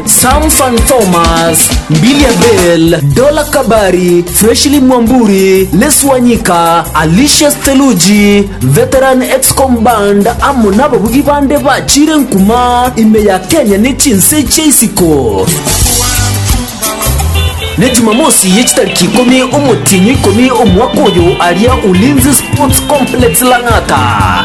Sam Fan Thomas, Mbilia Bel, Dola Kabari, Freshly Mwamburi, Les Wanyika, Alicia Steluji, Veteran Excom Band amo nababugi bande bachire nkuma ime ya Kenya ne chinse chia isiko. Ne Jumamosi ye chitariki ikomi omotienyi ikomi omwaka oyo aria Ulinzi Sports Complex Lang'ata.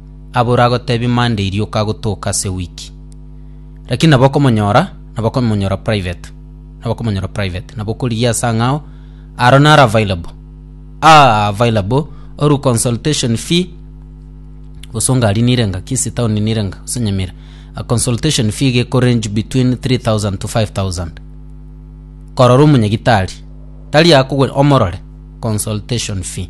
Aboro agotebia Monday irioka agotoka ase wiki. Lakini nabo okomonyora, nabo okomonyora private. Nabo okomonyora private. Nabo okorigia ase ang'ao, aro naro available. Ah, available, oru consultation fee, gose ongari nire nga, Kisii town nire nga, gose Nyamira. A consultation fee iga eko range between 3,000 to 5,000. Korora omonyagitari, tari akogwe, omorore, consultation fee.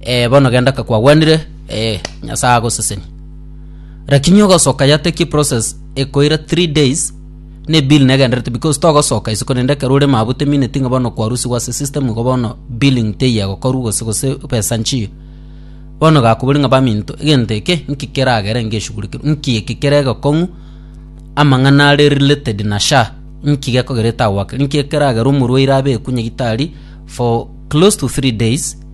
Eh, bono genda ka kwagwenire, eh, Nyasae agoseseni. Lakini ogosoka yateki process ekoira 3 days ne bill negenderete because togosoka isiko nende ekero ore mabute mine tinga bono kwarusigwa ase system igo bono billing teiya gokorwa gose gose pesa nchiyo bono gakobori ng'a baminto egento eke nki keragere ngeshugurikirwe nki eki kere egekong'u amang'ana are related na sha nki gekogerete agwakera nki ekeragera omorwaire abe ekunye gitari for close to 3 days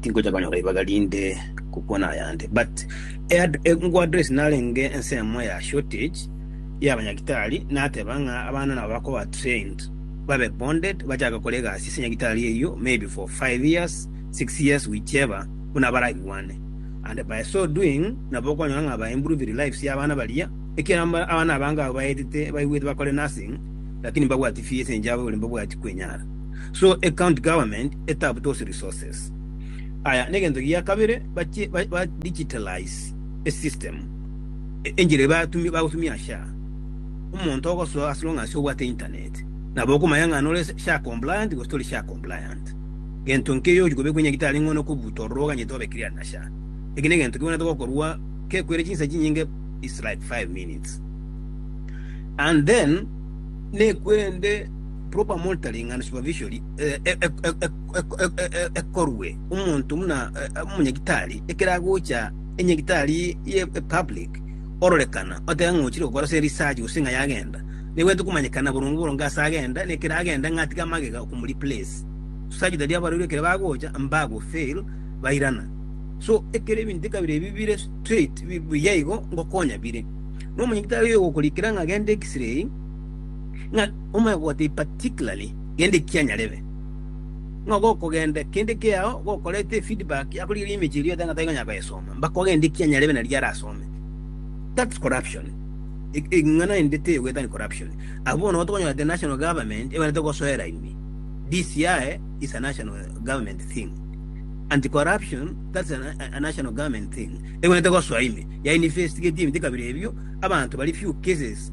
Tingocha konyora ribaga rinde gokwana ayande but engwa address narenge ensemo ya shortage ya abanyagitari nateba ng'a abana nabo bakoba trained babe bonded bachake gokora egasi ase nyagitari eyio maybe for five years six years whichever buna baragigwane and by so doing nabo okonyora ng'a ba improved lives ya abana baria ekiagera abana abange abwo baetete baigwete bakore nursing lakini mbabwati fees enchabo igoro mbabwati kwenyara. So a county government etap those resources. Aya negento gia kabere bache ba, ba digitalize a system e- enchera batumia bagotumia SHA. Omonto ogosoa as long as obwate internet. Nabo okomanya ng'a nore SHA compliant gose tori SHA compliant. Gento nkeiyo ochi kobekwa nyagitari ng'o nokobuta ororo oganyete obe cleared na SHA. Eki negento kebwanete gokorwa kekwere chinsa chinyinge is like five minutes. And then nekwerende Proper monitoring and supervision ekorwe omonto buna omonyagitari ekero agocha enyagitari ye public ororekana oteba ng'a ochire gokora ase research gose ng'a yagenda nigo tokomanyekana boronge boronge ase agenda na ekero agenda ng'a tiga magega okomo replace such that abarwaire ekero bagocha mbago fail bairana so ekero ebinto ekabira ebi bire straight buya igo ngokonya bire na omonyagitari oyo ogokorikera ng'a genda x-ray Ng'a omoegwoti in particularly kende kianyarebe, ng'a gokogenda kende kiao gokorete feedback yakorigereria emechie eria oteba taikonyara koyesoma mpaka ogende kianyarebe naria arasome. That's corruption. Eng'ana ende teyogweta ni corruption. Abwo bono igo tokonyora the national government ebaete gosoera ime. DCI is a national government thing. Anti corruption that's a national government thing. Ebaete gosoa ime ya investigate ebinto kabere ebio abanto bari few cases.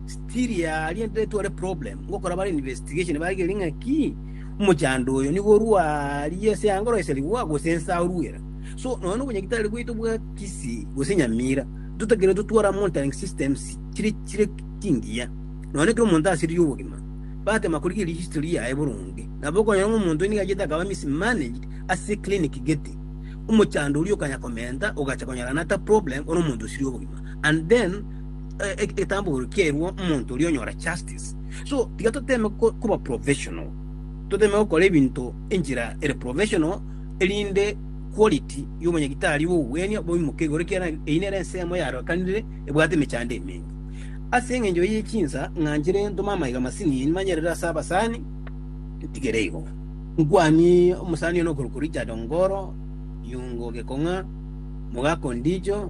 Still aria ndetware problem ngokora bare investigation bagerie ng'a ki omochando oyo nigo orua aria ase angoro ase rigwa gose nsa aruera so nonya na obonyagitari bwaito bwa kisi gose nyamira totakeire totware amo monitoring systems chire chire chingiya nonya ekero omonto asiririe obogima bagotema korigereria history yaye boronge nabo okonyora ng'a omonto oyo nigo achiete akaba mismanaged ase clinic gete omochando oria okanya komenta ogacha konyora another problem ore omonto osiririe obogima and then eh, eh, egetambo kerwo omonto oria onyora justice so tiga toteme ko- koba professional toteme gokora ebinto enchera ere professional erinde quality y'omonyagitari bogwenia boimoke igoro ekiagera eyio nere ensemo yarokanire ebwate emechando eminge ase eng'encho eyio chinsa ng'anchire ntome amaiga masini nimanyerere ase abasani ntigere igo nkwanie omusani ono okorokwa richard ongoro yungo gekong'a mogako ndicho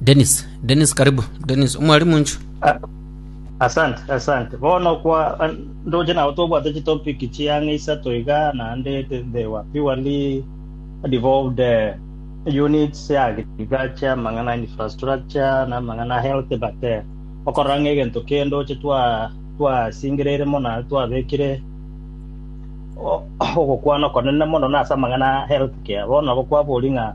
Dennis, Dennis karibu. Dennis, omwalimu nchu. Ah, asante asante bono kwa an- ndoche nabo tobwate chitopic chiang'a isato iga naende the- they were purely devolved eh, units ya agriculture amang'ana ya infrastructure na amang'ana ya health but eh, okorora ng'a egento kende oche twa twasingereire mono naende twabekire o- ogokwana okonene mono nase amang'ana ya health care bono nabo kwabori ng'a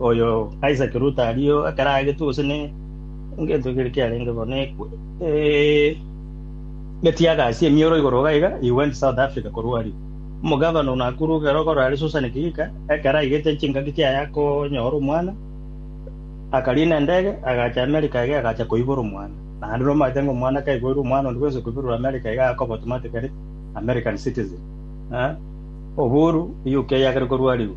Oyo Isaac Ruto aria o ekero aegetwe gose ne ngento kere kiarenge bo nekwe eh, getiaga ase emioro igoro iga iga he went South Africa korwa aria omogavana o Nakuru ekero okorora are Susan Kihika ekero aigete chingaki chiaye akonyora omwana akarina endege agacha America iga agacha koibora omwana naende nomanyete ng'a omwana kaiboirwe omwana onde bwense koiborerwa America iga akoba automatically American citizen eh, oburu UK yagere korwa aria o.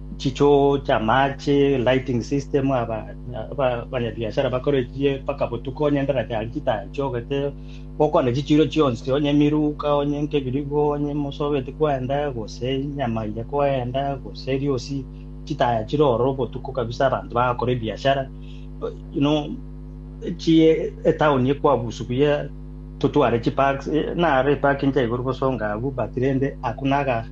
chichoo chi'amache, lighting system, aba- aba- abanyabiashara bakorechie mpaka botuko onye endara chiaye chitachogete, gokwana chichiiro chionsi, onye emiruka, onye nkebirigo, onye mosobeti kwenda, gose nyama eye kwenda, gose eriosi chitaya chire oro botuko kabisa abanto bagakora ebiashara. You know, chie etaoni ekwabusu buya totware chiparks, eh, naro epark nchia igoro bosonga abwo but rende hakuna aga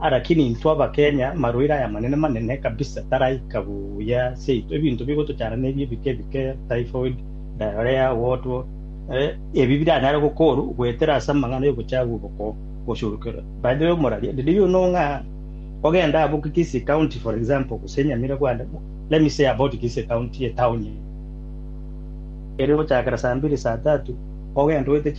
Alakini intwe Abakenya marwaire aya manene manene kabisa taraika buya seito ebinto bigotochana nebi ebike ebike typhoid, diarrhea, what what eh, ebi biranyare gokoru goetera ase amang'ana yobochafu obokoo gosurukerwa. By the way omoraria did you know ng'a ogenda abwo Kisii county for example gose Nyamirambo and let me say about Kisii county etown ere gochakera saa mbili saa tatu ogenda oete chi